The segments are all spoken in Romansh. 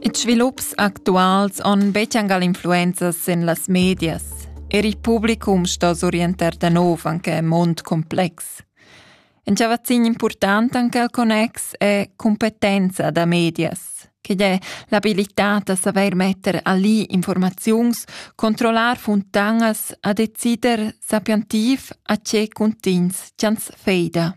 Ils svilups actuals han betg influenzas en las medias. Er il publicum sto s'orientar da nov anche en mund complex. In cavazzin important anche al connex è competenza da medias, che è l'abilità da saver metter a lì informaziuns, controllar funtanas a decider sapientiv a tge cuntins ch'ans feida.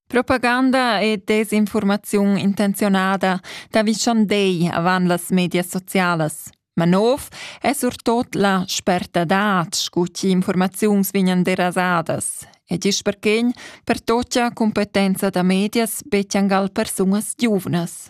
Propaganda e desinformaziun intenzionada t'avischan dei avant las medias socialas. Ma nov è surtot la spertadad scu chi informaziuns vignan derasadas ed isch perché per totia competenza da medias bettiangal persunas giuvnas.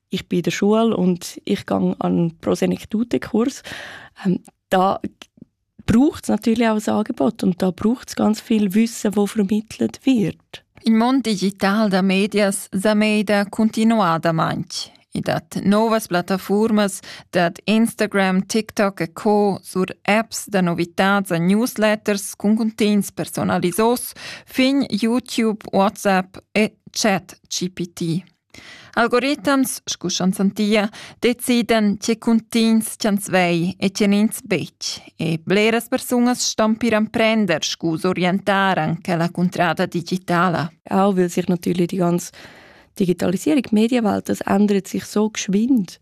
ich bin in der Schule und ich gehe an Pro Senectute Kurs. Ähm, da braucht es natürlich auch ein Angebot und da braucht es ganz viel Wissen, das vermittelt wird. Il mondo digitale da medias sa meda continuadamente. I dat novas plattaformas, dat Instagram, TikTok e co sur apps da novitats a newsletters con contents personalisos fin YouTube, WhatsApp e chat GPT. Algoritams, scu ch'ans han tia, decidan tge cuntigns ch'ans vei e tge n'ins betg. E bleras persunas ston pir emprender scu s'orientaran che la cuntrada digitala. Auch weil sich natürlich die ganze Digitalisierung, Medienwelt, das ändert sich so geschwind,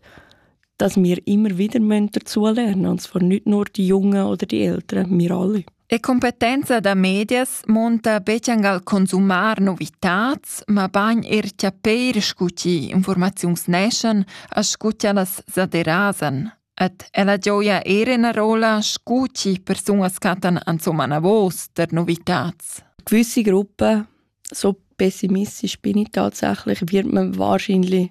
dass wir immer wieder dazu lernen müssen, und zwar nicht nur die Jungen oder die Älteren, wir alle. E competenza da medias monta betg al consumar novitats, mabain er chapeir scu chi informaziuns neschan, a scu cha las sa derasan. Ed ella gioia eir ena rola scu chi persunas cattan ansomma anavos der novitats. Gewisse Gruppen, so pessimistisch bin ich tatsächlich, wird man wahrscheinlich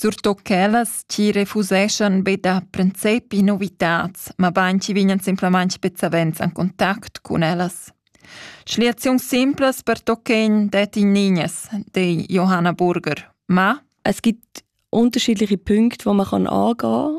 Surtut quellas chi refuseschan be da princepi novitats, ma bain chi vignan simplamaing be savens in contact cun ellas. Schliaziuns simplas pertoccan det in Niñas, de Johanna Burger. Ma es gibt unterschiedliche Punkte, die man angehen kann,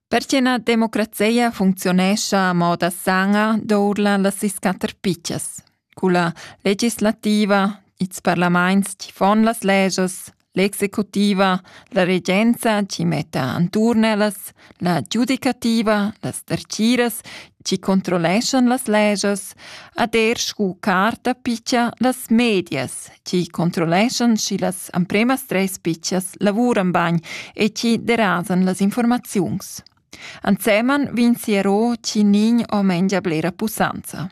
Perche na democrazia funcziunescha a moda sana dourla las sis quatter pitschas, culla legislativa, ils parlaments chi fon las legias, l'executiva, la regenza chi metta anturn ellas, la giudicativa, las derciras chi controlleschan las legias ad er scu carta picha las medias, chi controlleschan schi las ampremas tres pichas lavuran bagn e chi derasan las informaziuns. Anseman vin siero chi nin o mengia blera pusanza.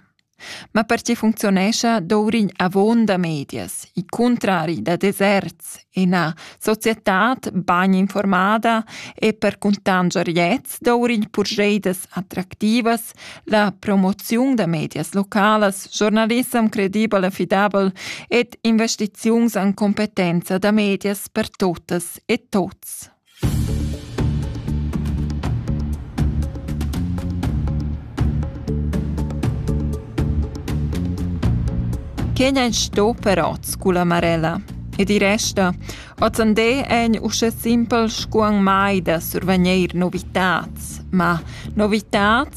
Ma per ci funzionescia dourign avon da medias, i contrari da deserts ina societad bagn informada e per cuntanscher gliez dovrigl purscheidas attractivas la promoziun da medias localas, journalissem credibel e fidabel ed investiziuns an competenza da medias per totas e tots. Che n'en sto per oz culla Marella? E di resta, ozzandé en usche simpel scuan mai da survegnir novitats, ma novitats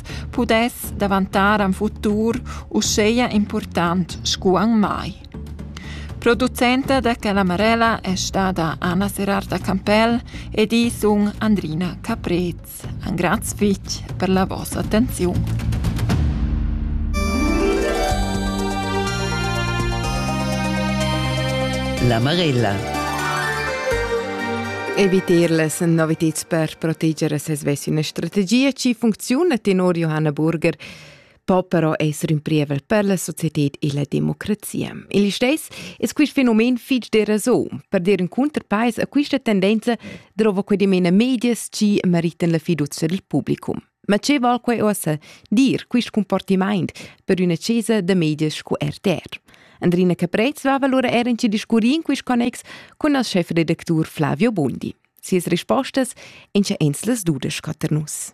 pudess davantar an futur uscheia important scu an mai. Producenta da Calamarella è stada Anna Serarda Campell ed i sun Andrina Caprez. An graz fitg per la vossa attenziun. La Marella. Evitirles noviteds per proteger ses ves üna strategia chi funcziuna tenor Johanna Burger po però esser ün prievel per la societed e la democrazia. Il steis es quist fenomen fich deraso. Per dir ün cunterpais a quista tendenza drova que dimena medias chi meritan la fiducia del publicum. Ma che val quai ossa dir quist comportamaint per üna chesa da medias sco RTR? Andrina Caprez va allora er in ci discurri in quist connex con il chef-redactur Flavio Bondi. Sias rispostas ein sche ins las dudesch cater nus.